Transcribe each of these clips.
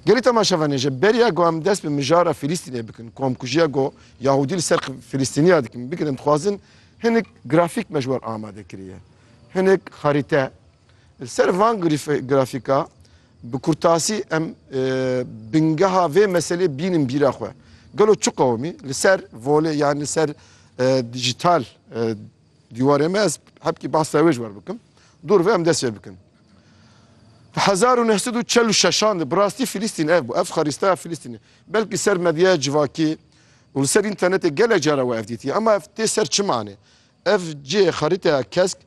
Gelê temaşevanê ji beriya ku em dest bi mijara Filistînê bikin, komkujiya ku Yahûdî li ser Filistîniya dikin, bikin em dixwazin hinek grafîk me ji wan amade kiriye. Hinek xerîte. Li ser van grafîka bi kurtasî em bingeha vê meselê bînin bîra xwe. Gelo çi qewimî li ser volê yan li ser dijital Dîwarê me ez hebkî behsa wê ji wer bikim. Dûr ve em dest pê bikin. Di hezar û neh sed û çel û şeşan de bi rastî Filîstîn ev bû. Ev xarîsteya Filîstînê. Belkî ser medyaya civakî û li ser înternetê gelek cara we ev dîtiye. Ema ev tê ser çi manê? Ev cihê xarîteya kesk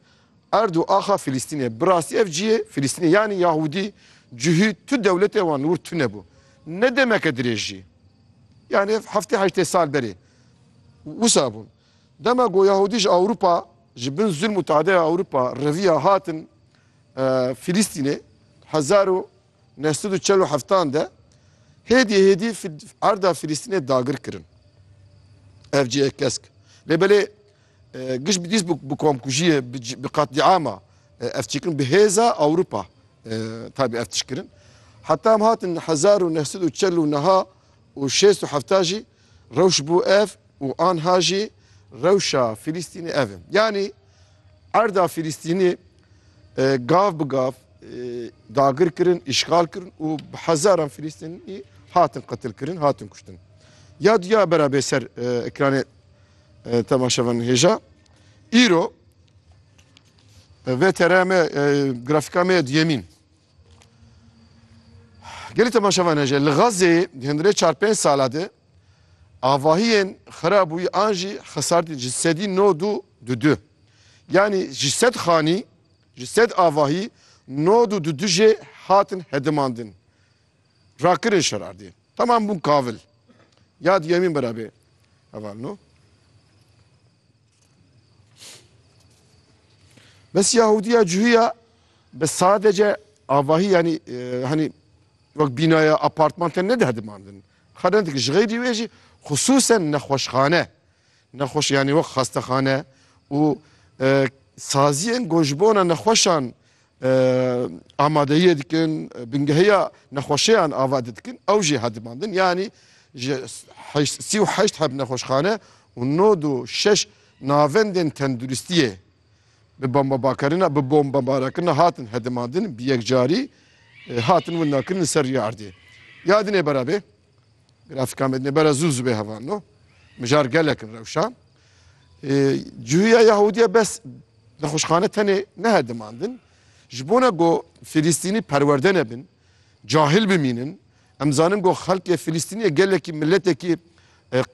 erd û axa Filîstînê ye. Bi rastî ev cihê Filîstînê yanî Yahûdî, Cihî tu dewletê wan li wir tunebû. Ne demeke dirêj jî. Yanî ev heftê heştê sal berê wisa bûn. Dema ku Yahûdî ji Ewropa, ji bin zulm û tadeya Ewropa reviya hatin Filîstînê hezar û neh sed û çel û heftan de hêdî hêdî erda Filîstînê dagir kirin. Ev cî ye kesk. Lê belê giş bi dîs bi komkujiyê bi qatliama ev çêkirin bi hêza Ewropa tabî ev tişkirin. Heta em hatin hezar û neh sed û çel û niha û şêst û hefta jî Rewş bû ev û anha jî rewşa Filistînê ev e. Yanî erda Filistînê gav bi gav dagir kirin, îşgal kirin û bi hezaran Filistînî hatin qetil kirin, hatin kuştin. Ya duya bera bê ser ekranê temaşevan hêja. Îro ve tereme grafika me duyemîn. Gelî temaşevan heye li Xazzê hindirê çar pênc sala de avahiyên xira bûyî an jî xesartîn ji sedî no du du du. Yanî ji sed xanî ji sed avahî no du du du jê hatin hedimandin. Rakirin şerardê. Tamam bûn kavil. Yad yemîn bera bê. Heval no. Bes Yahudiya cühiya bi sadece avahî yanî e, hanî wek bînaya apartman te nede dimandin. Xerendik ji xeyrî wê jî xisûsen nexweşxane. Nexweş yanî wek xastexane û e, saziyên ku ji bona nexweşan amadeyiyê dikin, bingehiya nexweşeyan ava didikin, ew jî hedimandin. Yanî ji sî û heşt heb nexweşxane û nod û şeş navendên tenduristiyê bi bombebakerina bi bombebarakirina hatin hedimandin, bi yekcarî hatin windakirin li ser rîya erdê. Ya din ê berevê. Grafîka Mednêbera zû zû bê heval no. Mijar gelek in rewşa. Cihûya Yahûdiya bes nexweşxane tenê nehe dimandin. Ji bona ku Filîstînî perwerde nebin, cahil bimînin, em zanin ku xelkê Filîstîniyê gelekî miletekî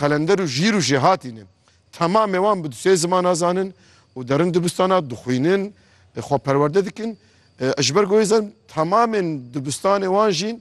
qelender û jîr û jêhatî ne. Temamê wan bi du sê zimana zanin û derin dibistana dixwînin, xwe perwerde dikin. Ji ber ku hêzan temamên dibistanê wan jî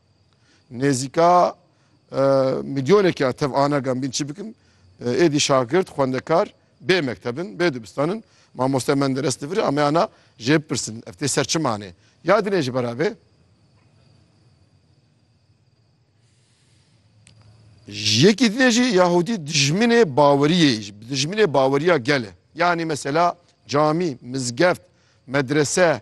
Nêzîka milyonekî ya tev anagan bîn çi bikin? Êdî şagirt, xwendekar bê mekteb in, bê dibistan in. Mamoste Menderes di vir a me ana jê bipirsin ev tê ser çi manê? Ya dinê ji bera vê? Yekî dinê jî Yahudî dijminê baweriyê jî, dijminê baweriya gel e. Yanî mesela camî, mizgeft, medrese,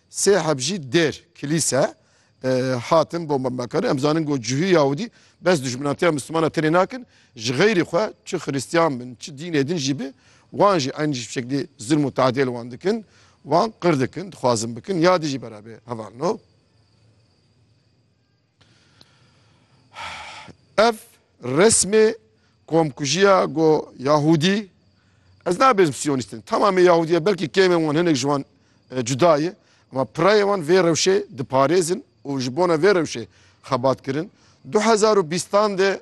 Sê heb jî dêr, kilîse, hatin bombemekirin. Em zanin ku cihû Yahûdî bes dijminatiya Mislûmanan tenê nakin, ji xeyrî xwe çi Xirîstiyan bin, çi dînê din jî bi, wan jî eynî ji bi şeklî zilm û teadiyê li wan dikin, wan qir dikin, dixwazin bikin ya dijî berevê hevalino. Ev resmê komkujiya go Yahudî ez nabêjim Siyonîst in. Tamamê Yahudî ye belkî kêmên wan hinek ji wan e, cuda ye. Ama pirayê wan vê rewşê diparêzin û ji bona vê rewşê xebat kirin. Du hezar û bîstan de